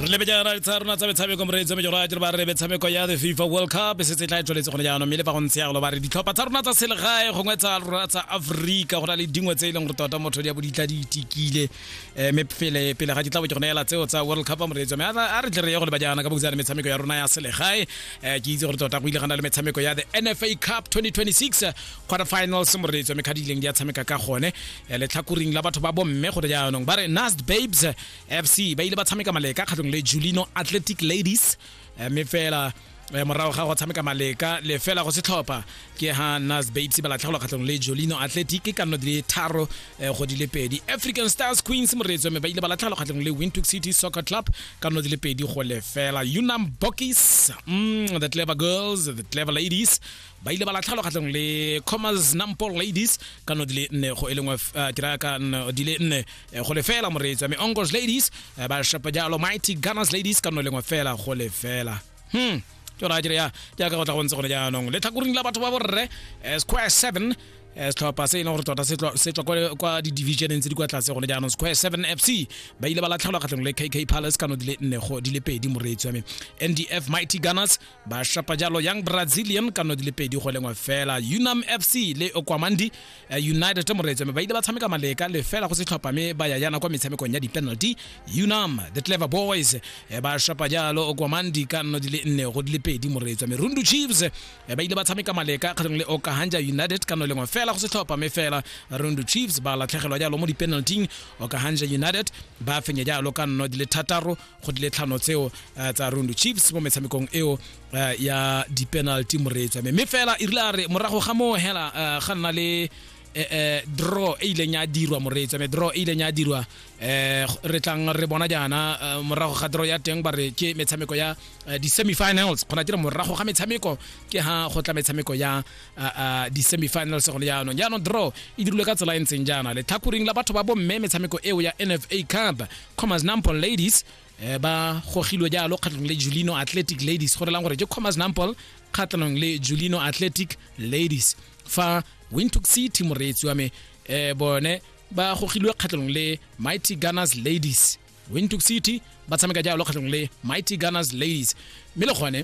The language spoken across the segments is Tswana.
re lebejana le tsa rona tsa metshameko moreetsi wa mejoro ya jere ba re metshameko ya the fifa world cup se se tla e tswaletse gone jaanong mme le fa go ntse yalo ba re ditlhopha tsa rona tsa selegae gongwe tsa rona tsa aforika go na le dingwe tse e leng gore tota motho di ya bo di tla di itikile um mme pele pele ga ke tla bo ke gone ela tseo tsa world cup moreetsi wa me a re tle re ye go leba jaana ka bokutsa le metshameko ya rona ya selegae um ke itse gore tota go ile ga na le metshameko ya the nfa cup 2026 quarter finals moreetso mme kgadi ileng di a tshameka ka gone eh, letlhakoring la batho ba bomme gore jaanong ba re nast babes fc ba ile ba tshameka maleka kgatlhong le julino athletic ladies eh, mme fela eh, morago ga go tshameka maleka le fela go setlhopha ke ha nas babes ba latlhegelwa kgatlhong le jolino athletic ka nno di le tharo go di le pedi african stars queens moreetso mme ba ile ba latlhegelwa kgatlhong le wintook city soccer club ka nno di le pedi go lefela unam bokis mm, the clever girls the clever ladies ba ile ba latlhelwa kgatlhanong le commas nampo ladies ka no di le nne go e lengwe eh, ke raya ka no di le nne eh, go le fela moreetsi mme ongos ladies eh, ba shapa jalo mighty gunners ladies ka no e lengwe fela go le fela hmm ke ra dire ya jaaka go tla go ntse gone jaanong le tlhakoring la batho ba borre eh, square 7 eh, setlhopha se e leng gore tota se tlo- se tswa kwa- kwa di-divisioneng tse di kwa tlase gone jaanong square 7 fc ba ile ba latlhelwa kgatlhanong le kk palace ka no di le nne go di le pedi moreetsi wa me ndf mighty gunners ba shapa jalo young brazilian ka no di le pedi go lengwe fela unam fc le okwamandi eh, united moreetso mme ba ile ba tshameka maleka le fela go se tlhopha mme ba ya yana kwa metshamekong ya di-penalty unam the clever boys eh, ba shapa jalo okwamandi ka no di le nne go di le pedi moreetso mme rundu chiefs eh, ba ile ba tshameka maleka kgatlhong le okahanja united ka no lengwe fela go se tlhopha mme fela rundu chiefs ba latlhegelwa jalo mo di-penalting okahanja united ba fenya jalo ka nno di le thataro go dile tlhano tseo eh, tsa rundu chiefs mo metshamekong eo eh, ya di-penalty moreetswa me mme fela e rile a re morago ga moo hela eh, ga nna le eh, eh, draw e ileng ya dirwa moreetswa me draw e ileng ya dirwa eh, re tlang re bona jaana eh, morago ga draw ya teng ba re ke metshameko ya eh, di-semifinals kgona tira morago ga metshameko ke ha go tla metshameko ya di-semifinals gone jaanong jaanong draw e dirilwe ka tsela e ntseng jaana letlhakoring la batho ba bomme metshameko eo ya nfa cup commas nampol ladies eh, ba gogilwe jalo kgatlhanong le julino athletic ladies go relang gore ke commas nampol kgatlhanong le julino athletic ladies fa wintook city moreetsi wa me eh, bone ba gogilwe kgatlhanong le mighty gunners ladies wintook city ba tshameka jalo kgatlhanong le mighty gunners ladies mme le gone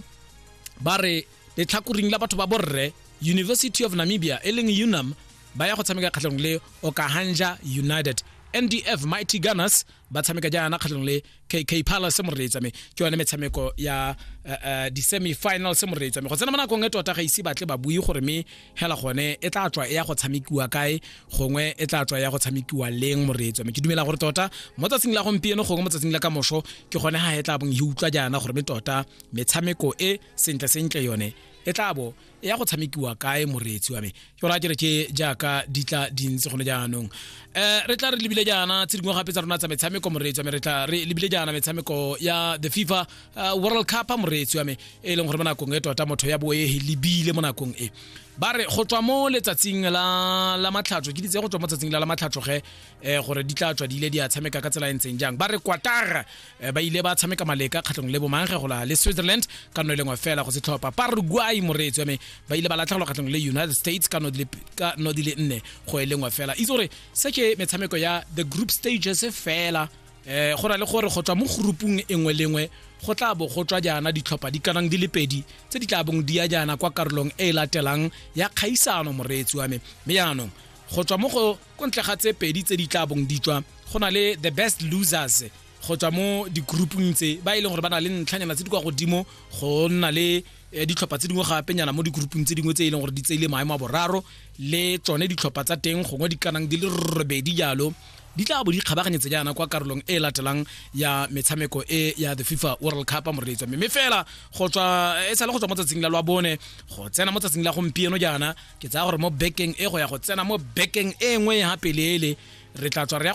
ba re letlhakoring la batho ba borre university of namibia e leng unam ba ya go tshameka kgatlhanong le okahanja united ndf mighty gunners ba tshameka jaana kgatlhanong le kk palace mo reetsame ke yone metshameko ya uh, uh, di-semi final se mo reetsame go tsena mo nakong e tota ga ise batle ba bue gore me hela gone e tla tswa e ya go tshamekiwa kae gongwe e tla tswa e ya go tshamekiwa leng mo reetsame ke dumela gore tota mo tsatsing la gompieno gongwe mo tsatsing la kamoso ke gone ga e tla bong e utlwa jaana gore me tota metshameko e sentle sentle yone e tla bo e ya go tshamekiwa kae moreetsi wa me ke gore a kere ke jaaka di tla dintsi gone jaanong um re tla re lebile jaana tse dingwe gape tsa rona tsa metshameko moreetsi wa me re tla re lebile jaana metshameko ya the fifa eh, world cup moreetsi wa me e leng gore mo nakong e tota motho ya boe e lebile mo nakong e ba re go tswa mo letsatsing la la matlhatso ke ditse go tswa mo tsatsing la la matlhatso ge eh, gore di tla tswa di ile di a tshameka ka tsela e ntseng jang ba re kwatara Eh, ba ile ba tshameka maleka kgatlhong le bomangge go la le switzerland ka no e lengwe fela go se tlhopha paraguay moreetsi wa me ba ile ba latlhegelwa kgatlhong le united states ka no di le nne go e lengwe fela itse gore se ke metshameko ya the group stages fela um go na le gore go tswa mo groupung e nngwe le nngwe go tla bo go tswa jaana ditlhopha di kanang di le pedi tse di tla bong di ya jaana kwa karolong e e latelang ya kgaisano moreetsi wa me mme jaanong go tswa mo go ko ntle ga tse pedi tse di tla bong di tswa go na le the best losers go tswa mo di-groupung tse ba e leng gore ba na le ntlhanyana tse di kwa godimo go nna le eh, ditlhopha tse dingwe gapenyana mo di-groupung tse dingwe tse e leng gore di tseile maemo a boraro le tsone ditlhopha tsa teng gongwe di kanang di le robedi jalo di tla bo di kgabaganyetse jaana kwa karolong e latelang ya metshameko e ya the fifa world cup moreletso mme fela go tswa e sale go tswa mo tsatsing la lwa bone go tsena mo tsatsing la gompieno jaana ke tsaya gore mo bekeng e go ya go tsena mo bekeng e nngwe ya peleele re tla tswa re ya